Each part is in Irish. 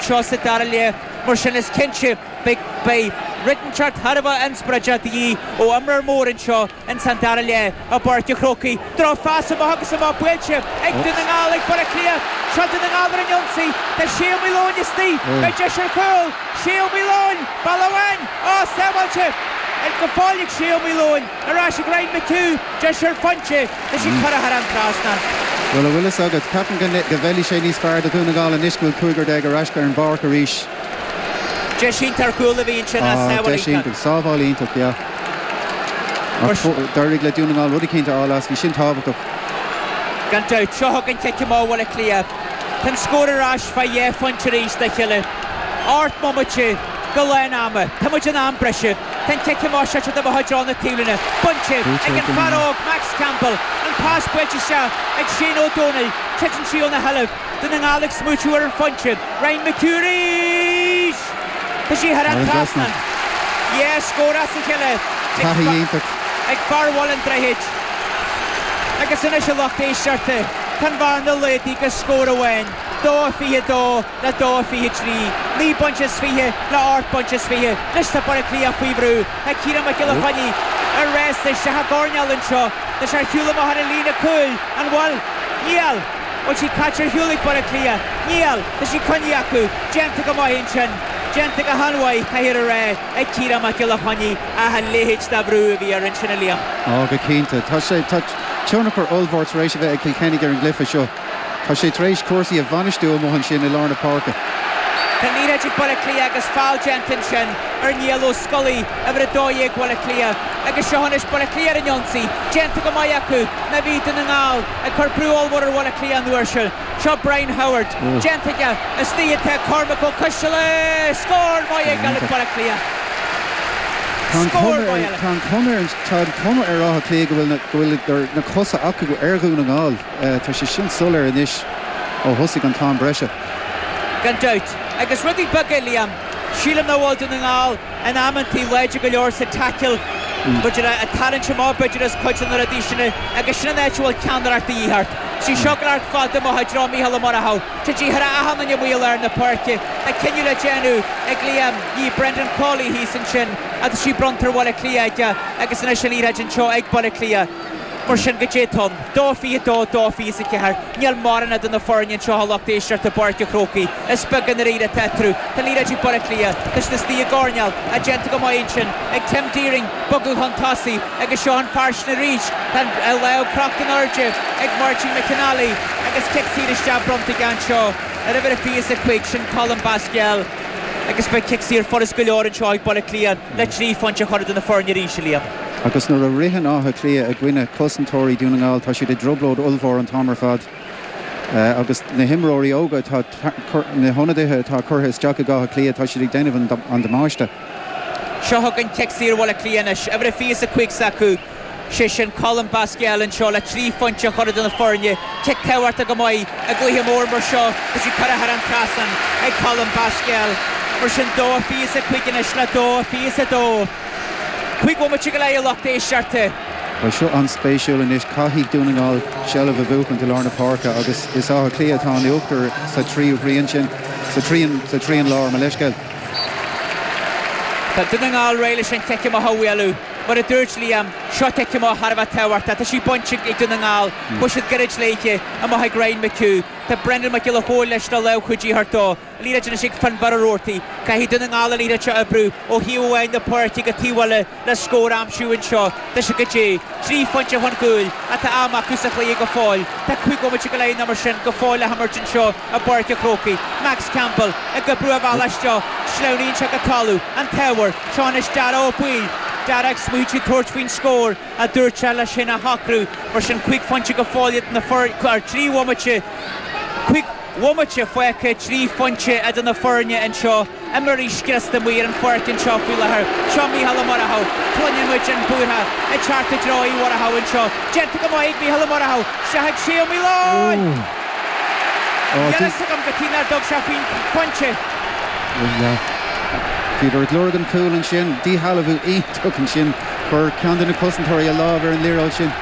seo sa dara leath, mar sin is cinnte beidh rud inteacht thar a bheith inspioráideach de dhíth ó imreoir mór anseo in san dara leath i bPáirc a Chrócaigh. Droch phas amach agus amach buailte ag Dún na nGall ag Baile Átha Cliath. Seo Dún na nGall ar an ionsaí. Tá Shay Ó Maoileoin istigh. Beidh deis ar chúl. Shay Ó Maoileoin! Buille amháin, ó sábháilte go fóill ag Shay Ó Maoileoin. Ar ais ag Ryan McHugh, deis ar phointe leis an curadh thar an trasnán. Bhuel, a bhfuil fhios agat, ceapaim go bhfeilfidh sé níos fearr do Dhún na nGall anois go bhfuil cúigear déag ar ais ar an bpáirc arís. Deis iontach ar chúl a bhí ansin ach sábháil iontach. Deis iontach, sábháil iontach, yeah. Ach d'éirigh le Dún na nGall rud eicínt a fháil as, bhí sin tábhachtach. Gan dabht, seo chugainn cic amach Bhaile Átha Cliath. Tá an scór ar ais fá dhá phointe arís, a Chille. Ocht mbomaite go lán ama. Tá muid in am breise. Tá an cic amach fada amach i dtreo na taobhlíne bainte ag an fear óg Max Campbell. An pas buailte isteach ag Shane Ó Domhnaill. Titeann sí óna sheilbh. Dún na nGall ag smaoitiú ar an phointe. Ryan McHugh arís! Tá sí thar an trasnán. Dhá scór as a chéile ag fear Bhaile an Droichid. Agus anois a lucht éisteachta, tá an bhearna laghdaithe go scór amháin, 2-22. le dó a fiche trí, naoi bpointe is fiche le ocht bpointe is fiche, anois tá Baile Cliath faoi bhrú ag Ciarán Mac Giolla Choinnigh ar ais isteach sa gcoirnéal anseo leis ar shiúl amach ar an líne cúil, an bhfuil? Níl! bhfuil sí caite ar shiúl ag Baile Cliath? Níl! tá sí coinnithe acu, déanta go maith ansin, déanta go han-mhaith, caithfear a rá, ag Ciarán Mac Giolla Choinnigh ach a leithéid de bhrú a bhí air ansin a Liam. Ó go cinnte. Tá sé, tá tionchar ollmhór tar éis a bheith ag Kilkenny ar an gcluiche seo. Tá sé tar éis cúrsaí a bhainistiú amuigh ansin i lár na páirce. Tá an liathróid ag Baile Átha Cliath agus feall déanta ansin ar Niall Ó Scolaí, uimhir 12 Bhaile Cliath, agus seo anois Baile Átha Cliath ar an ionsaí. Déanta go maith acu, mar bhí Dún na nGall ag cur brú ollmhór ar Bhaile Átha Cliath an uair seo. Seo Brian Howard. Déanta aige, istigh atá Cormac Ó Coisteala! Scór maith ag Baile Átha Cliath. Scór maith eile. Tá an, tá an chuma ar Áth Cliath go bhfuil, go bhfuil na cosa acu ar Dhún na nGall. Tá sé sin soiléir anois ó thosaigh an t-am breise. Gan dabht. Agus rudaí beaga, a Liam. Sílim nach bhfuil Dún na nGall in amanntaí láidir go leor sa tackle, b'fhéidir, ag tarraingt amach, b'fhéidir, as cuid de na rudaí sin é. Agus sin an áit a bhfuil ceannaireacht de dhíth ort. Tá sí seo ag gabháil ard fada amach i dtreo Mícheál Ó Muireadhaigh, tá sí thar achan duine amuigh i lár na páirce, tá cinneadh le déanamh a Liam, ag Brendan Cawley thíos ansin, agus tá sí bronnta ar Bhaile Átha Cliath aige agus anois an liathróid anseo ag Baile Átha Cliath. Mar sin, goidé tá ann. Dó fiche a dó, dó fiche is a ceathair. Níl mórán idir na foirne anseo a lucht éisteachta i bPáirc a' Chrócaigh. Is beag i ndairíre atá eatarthu. Tá liathróid ag Baile Átha Cliath. Tá siad istigh i gcoirnéal. Tá déanta go maith ansin ag Tim Deering bogadh chun tosaigh agus seo an fear sin arís. Tá an lámh crochta in airde ag Máirtín McNally agus cic saor isteach bronnta aige anseo ar uimhir a fiche is a cúig, sin Colm Basquel. Agus beidh cic saor furas go leor anseo ag Baile Átha Cliath le trí phointe a chur idir na foirne arís, a Liam. Agus nuair a ritheann Áth Cliath i gcoinne cosantóirí Dhún na nGall, tá siad i dtrioblóid ollmhór an t-am ar fad agus na himreoirí óga atá, na hionadaithe atá curtha isteach ag Áth Cliath, tá siad ag déanamh an damáiste. Seo chugainn cic saor Bhaile Átha Cliath anois. Uimhir a 25 s'acu, sé sin Colm Basquel anseo le trí phointe a chur idir na foirne. Cic tabhartha go maith i gcluiche mór mar seo agus í curtha thar an trasnán ag Colm Basquel. Mar sin dó a 25 anois le dó a 22. Cúig bhomaite go leith a lucht éisteachta. Beidh seo an-spéisiúil anois, caithfidh Dún na nGall seilbh a bhuachaint i lár na páirce agus is Áth Cliath atá in uachtar sa tríú thrian sin, sa trian, sa trian láir, mo leithscéal. Tá Dún na nGall réidh leis an chic amach a bhualadh. Mar a dúirt Liam, seo cic amach thar a bheith tábhachtach. Tá sí bainte ag Dún na nGall, chuaigh siad gairid léithe, amach ag Ryan McHugh. Tá Brendan Mac Giolla Chóill leis le lámh chuidithe a thabhairt dó. Liathróid anois ag Fionnbarra Roarty. Caithfidh Dún na nGall an liathróid seo a oibriú ó thaobh amháin na páirce go taobh eile le scór a aimsiú anseo. Deis acu. Goidé, trí phointe chun gcúil ach tá am acu sa chluiche go fóill. Tá cúig bhomaite go leith nó mar sin go fóill le himirt anseo i bPáirc a' Chrócaigh. Max Campbell ag oibriú a bhealach isteach. Sleamhnaíonn sé go talamh. An t-ábhar. Seo anois Dara Ó Baoill. Dara ag smaoitiú tabhairt faoin scór a dúirt sé leis féin a shocrú. Mar sin cúig phointe go fóill idir na foirne, trí bhomaite, cúig. Bhomaite fágtha trí phointe idir na foirne anseo imreoirí scriosta amuigh ar an pháirc anseo faoi láthair. Seo Micheál Ó Murchadha. Cluineann muid an búirtheach ag teacht i dtreo Uí Mhurchadha anseo. Déanta go maith ag Micheál Ó Murchadha. Isteach chuig Sé Ó Maoileoin. Níl a fhios agam cad chuige nár dtug sé faoin phointe. Bhí sé ag lorg an chúil ansin. Díshealbhú iontach ansin. Chuir ceann de na cosantóirí a lámh ar an liathróid sin.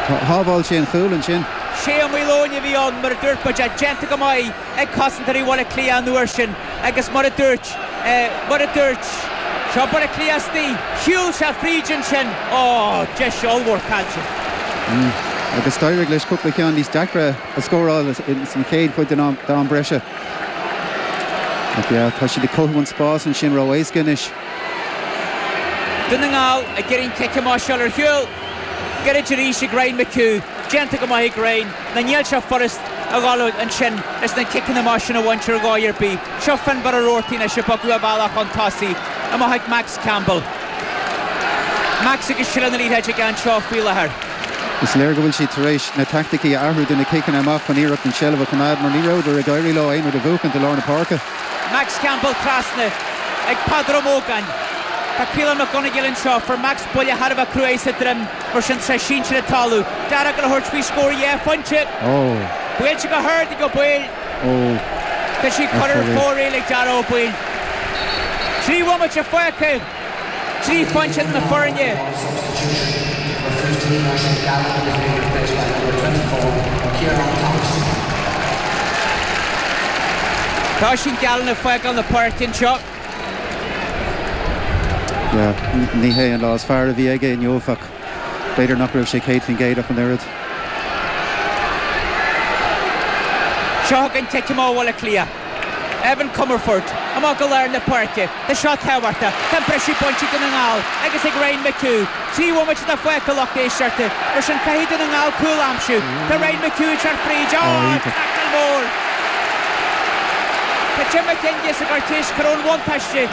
Shábháil sé an cúl ansin. Sé Ó Maoileoin a bhí ann, mar a dúirt muid, ach déanta go maith ag cosantóirí Bhaile Átha Cliath an uair sin agus mar a dúirt, mar a dúirt, seo Baile Átha Cliath istigh, shiúil sé fríd ansin, á, deis ollmhór caillte. Agus d'éirigh leis cúpla ceann níos deacra a scóráil sa chéad chuid den am breise. Ach, yeah, tá siad ag cothú an spás ansin ró-éasca anois. Dún na nGall ag iarraidh an cic amach seo a fháil ar shiúl. Gairid arís ag Ryan McHugh. Déanta go maith ag Ryan. Ná níl sé furast a dhul amach ansin is na ciceanna amach sin a bhaint ar dhóigh ar bith. Seo Finnbarr Roarty anois ag bogadh a bhealach chun tosaigh, amach ag Max Campbell. Max agus seilbh na liathróide aige anseo faoi láthair. Is léir go bhfuil siad tar éis na taicticí a athrú do na ciceanna amach chun iarracht an tseilbh a choimeád mar ní rabhadar ag éirí leo aon rud a bhuachaint i lár na páirce. Max Campbell trasna ag Peadar Ó Mógáin. Tá Caolan Mac Gonigail anseo, fuair Max buille thar a bheith cruaidh sa droim, mar sin tá sé sínte ar an talamh. Dara ag gabháil a thabhairt faoi scór dhá phointe. Buailte go hard ag Ó Baoill. Agus é curtha ar fóraoil ag Dara Ó Baoill. Trí bhomaite fágtha. Trí phointe idir na foirne. Tá Oisín Gallen ag fágáil na páirce anseo. Ní hé an lá is fearr a bhí aige inniu ach. B'fhéidir nach raibh sé céad faoin gcéad ach an oiread. Seo chugainn cic amach Bhaile Átha Cliath. Evan Comerford amach go lár na páirce. Tá seo tábhachtach. Tá an briseadh bainte ag Dún na nGall agus ag Ryan McHugh. Trí bhomaite atá fágtha a lucht éisteachta. Mar sin caithfidh Dún na nGall cúl a aimsiú. Tá Ryan McHugh ag teacht fríd. Ááá, taicil mór! Tá Jim McGuinness ag cuartú, cuir ón bhuntáiste!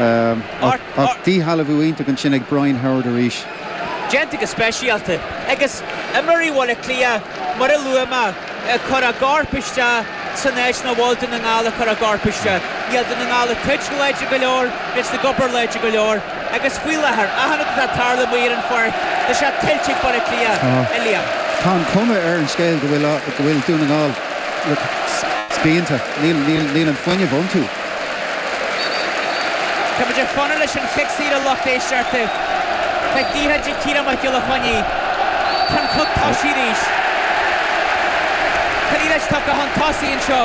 Ach díshealbhú iontach ansin ag Brian Howard arís. Déanta go speisialta agus imreoirí Bhaile Átha Cliath mar a luaigh mé ag cur a gcorp isteach san áit nach bhfuil Dún na nGall ag cur a gcorp isteach. Níl Dún na nGall ag troid láidir go leor, níl siad ag obair láidir go leor agus faoi láthair, achan rud atá ag tarlú amuigh ar an pháirc, tá sé tuillte ag Baile Átha Cliath, a Liam. Tá an chuma ar an scéal go bhfuil Dún na nGall spíonta, níl an fuinneamh iontu. Tá muid ag fanacht leis an chic saor, a lucht éisteachta. Tá an liathróid ag Ciarán Mac Giolla Chainnigh chun an cluiche a thosú arís. Tá an liathróid tugtha chun tosaigh anseo.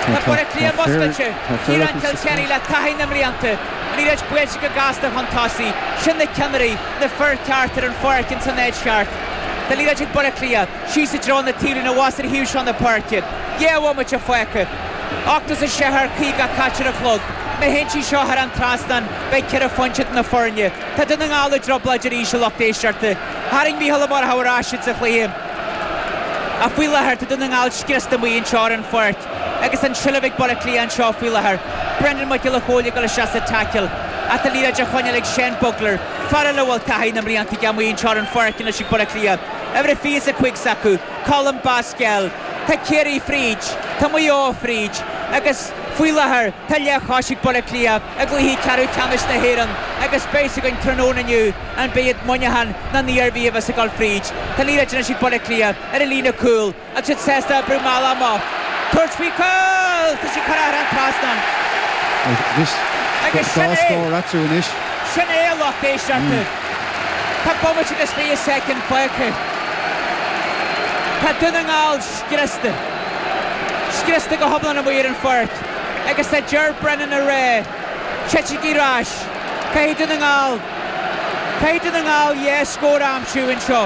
Tá Baile Átha Cliath muscailte, Ciarán Kilkenny le taithí na mblianta. An liathróid buailte go gasta chun tosaigh. Sin na ceannairí, na fir ceart ar an pháirc ins an áit cheart. Tá an liathróid ag Baile Átha Cliath, síos i dtreo na taobhlíne, abhus ar an taobh seo na páirce. Dhá bhomaite fágtha. Ocht as a sé thar caoga caite ar an chlog. Má théann sí seo thar an trasnán, beidh ceithre phointe idir na foirne. Tá Dún na nGall i dtrioblóid arís a lucht éisteachta. Tharraing Micheál Ó Murchadha ar ais iad sa chluiche. Ach faoi láthair, tá Dún na nGall scriosta amuigh anseo ar an pháirc agus an tseilbh ag Baile Átha Cliath anseo faoi láthair. Brendan Mac Giolla Chomhaill ag gabháil isteach sa taicil. Ach tá an liathróid á choinneáil ag Sean Bugler, fear eile a bhfuil taithí na mblianta aige amuigh anseo ar an pháirc anois ag Baile Átha Cliath. Uimhir a 25 s'acu, Colm Basquel. Tá Ciarraí fríd, tá Maigh Eo fríd agus faoi láthair tá leathchos ag Baile Átha Cliath i gcluiche ceathrú ceannais na hÉireann agus beidh 's againn tráthnóna inniu an mbeidh Muineachán ná an Iarmhí a bheas ag dul fríd. Tá an liathróid anois ag Baile Átha Cliath ar a líne cúl agus iad sásta oibriú mall amach. Tabhairt faoi chúl! Tá sé curtha thar an trasnán. Agus sin é! Sin é a lucht éisteachta! Tá bomaite agus fiche soicind fágtha. Tá Dún na nGall scriosta. Scriosta go hiomlán amuigh ar an pháirc agus tá Ger Brennan á rá, Titigí ar ais. Caithfidh Dún na nGall, caithfidh Dún na nGall dhá scór a aimsiú anseo.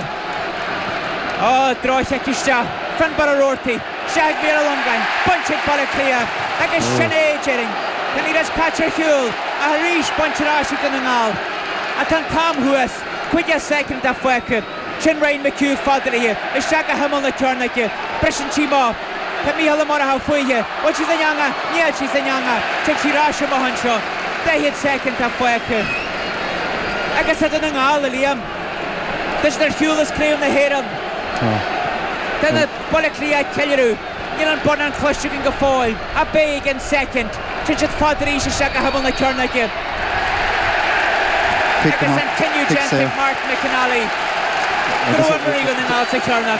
Ó, droch-chic isteach, Finnbarr Roarty. Cic Michael Langan bainte ag Baile Átha Cliath agus sin é déarfainn. Tá an liathróid caite ar shiúl ach arís bainte ar ais ag Dún na nGall. Ach tá an t-am thuas. Caoga soicind atá fágtha. Sin Ryan McHugh fada ard isteach go himeall na cearnóige. Briseann sí amach. Tá Mícheál Ó Murchú fúithi. Bhfuil sí san eangach! Níl sí san eangach! Tig sí ar ais amach anseo. Daichead soicind atá fágtha. Agus tá Dún na nGall, dar liom. Tá siad ar shiúl as Craobh na hÉireann. Tá Baile Átha Cliath ag ceiliúradh. Níl an bonnán cloiste againn go fóill, ach beidh i gceann soicind. Téann siad fada arís isteach go himeall na cearnóige. Agus an cinneadh déanta ag Martin McNally. Go raibh imreoir Dhún na nGall sa chearnóg.